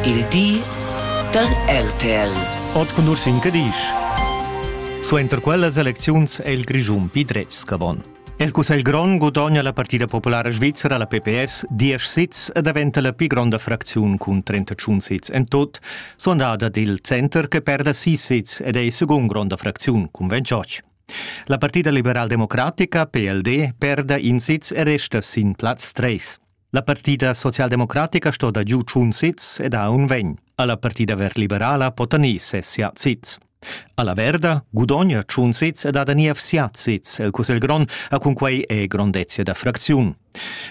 Il di da RTL. Ot cun Ursin Cadisch. Suenter quellas elecziuns è il Grischun pli dretg avon. Il Cussegl grond gudogna la partida populara svizzera, la PPS, diesch sits e daventa la pli gronda fracziun cun 31 sits en tut, sondada dil center che perda sis sits ed è la segunda gronda fracziun cun 28. La partida liberal-democratica, PLD, perda in sitz e resta sin plaz 3. La partida socialdemocratica sto da giu tschun sits ed ha un vegn. Alla partida verliberala pota ni sessia sits. Alla Verda gudogna tschun sits ed ha da niev siat sits. El Cussel Grond ha cunquei e grondezia da fracziun.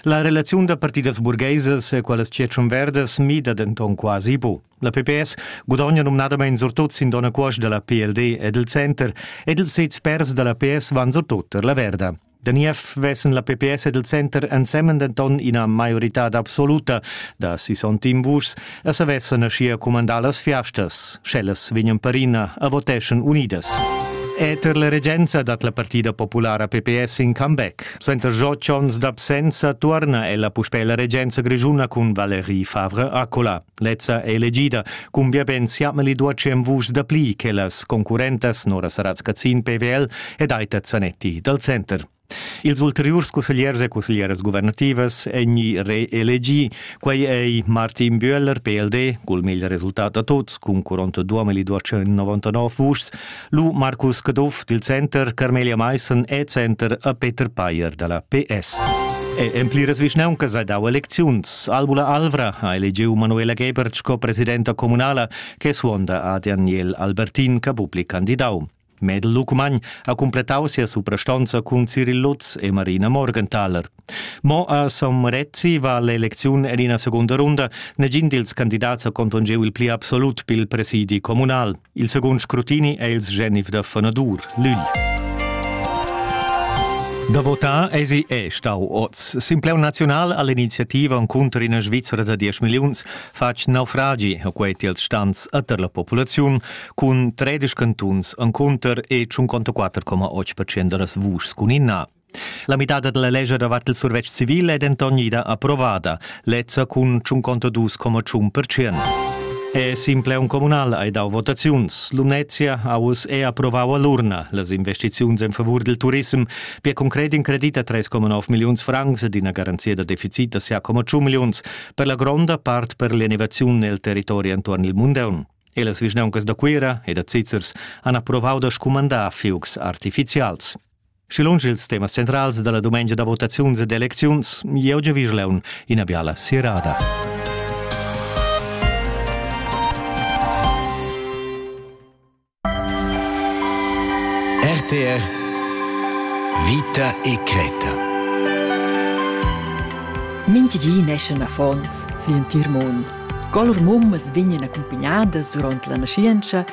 La relaziun da partidas burgheisas e qualas Tschetschen Verdas mida denton quasi bu. La PPS gudogna numnadamein surtut sin dona cuosch dalla PLD ed il center ed ils sits pers dalla PS van surtut per la Verda. Da niev vessen la PPS ed il center ensemen denton ina maioritad absoluta da 61 vuschs e savessen aschia cumandar las fiastas, sch'ellas vegnan perina a voteschan unidas. Eter la regenza dat la partida populara PPS in comeback. Suenter otg onns d'absenza tuorna ella puspè la regenza grischuna cun Valérie Favre-Accola. Lezza è elegida. Cumbia ben siatmeli duacem vus da pli che las concurrentas Nora Saratz-Cazin PWL ed Aita Zanetti dal center. Ils ulteriurs cussegliers e cusseglieras guvernativas èn reelegì. Quai è Martin Bühler, PLD, cul meglio resultat da tuts, cun 42.299 vuschs, Lu Marcus Caduff dil Center, Carmelia Meissen e Center a Peter Payer dalla PS. E en pliras vischnauncas ha dau elecziuns. Albula Alvra ha elegiu Manuela Gebert sco presidenta communala che suonda a Daniel Albertin che bupli candidau. Medel Lucmagn ha cumplettau sia suprastonza cun Cyril Lutz e Marina Morgenthaler. Mo a San Marezzi va l'elecziun en ina segunda runda. Negin dils candidats ha contongeu il pli absolut pil presidi communal. Il secund scrutini è il genif da Fonadur, Lüll. Da votar esi è stau oz. Simpleu naziunal all'iniziativa encunter ina Svizzera da 10 milliuns fatg naufragi ho quei tiels stans ater la populaziun cun 13 cantuns encunter e 54,8% da las vuschs cun inna. La midada dalla lescha davart il survetsch civil è denton ida approvada, lezza cun tschunconta dus coma tschun percent. E Simpleon Communal hai dau votaziuns. Lumnezia ha uss è approvau all'urna las investiziuns en favur dil turism per concret in credit a 3,9 milliuns francs ed ina garanzia da deficit da 6,2 milliuns per la gronda part per l'innovaziun nel territori entuorn il Mundeun. E las vischnauncas da Cuira e da Zizzers han approvau da scumandar fiugs artificials. Schi lunsch ils temas centrals dalla dumengia da votaziuns ed elecziuns, jeu giu Virleun ina biala sirada. RTR Vita e creta. Mintgi neschen affons si in tir mund. Col mummas vegnan accumpignadas durant la naschientscha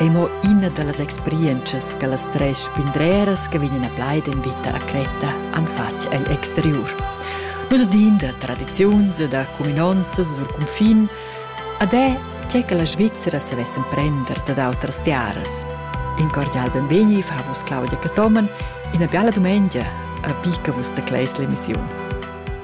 ei mo ina dallas experientschas che las tres spindreras che vegnan a plaid en vita a Creta han fatg egl exteriur. Nus din da tradiziuns e da cuminonzas sur cunfin ad è che che la Svizzera savessen prender dad outras tiaras. In cordial benvegni fa vos Claudia Catoman ina biala dumengia a picca vus da Cleis l'emissiun.